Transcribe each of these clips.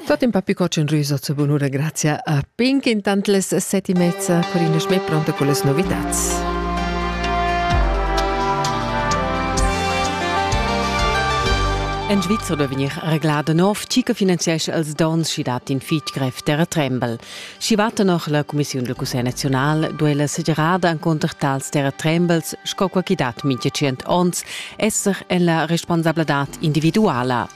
Tot in papi cocen rüso zur bunura grazia a Pink intant les seti mezza Corina Schmidt pronta con les novitats. En Svizzera vegnir reglada nov, tgi che finanziesce els dons chi dat in fitg grev terratrembel. Schi va tenor la cumissiun del Cussegl nazional duei la segerada encunter tals terratrembels, sco quei chi dat mintga tschient onns, esser en la responsabladad individuala.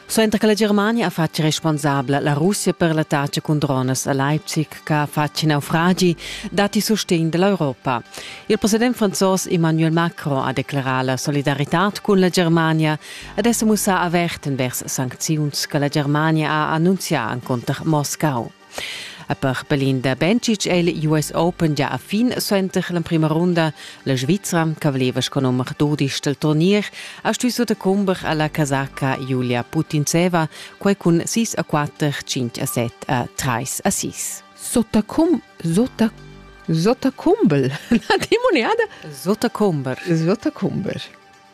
Suenter che la Germania ha fatg responsabla la Russia per l'attacca con dronas a Leipzig che ha fatg in naufragi, dati sostegn dell'Europa. Il president franzos Emmanuel Macron ha declarà la solidarità cun la Germania ed è sa mussà avert envers sancziuns che la Germania ha annunzià encunter Moscau. E per Belin da Bencic è il US Open già a fin suenter l'emprima runda. La Svizra, che voleva sco nummer 12 del turnier, ha stuì decumber alla casacca Julia Putintseva, quai cun 6 a 4, 5 a 7 a 3 a 6. Sottacum, sotta Sottakumbel. La timoneada? Sottakumber. Sottakumber.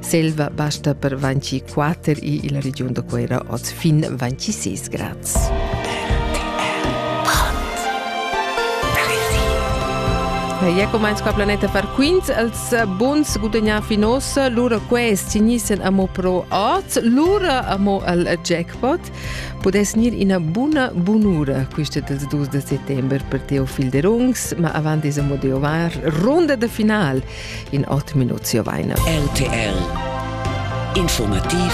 Selva basta per 24 i illa regiun da Cuera oz fin 26 grads. Ja comenz qua planeta far quint els buns gudagnar fin ossa lura quest signissen amo pro ot lura amo al jackpot podes nir ina buna bunura quista dels 2 de settembre per Teofil de Rungs ma avant des amo de ovar ronda de final in ot minut ziovaina. RTL Informativ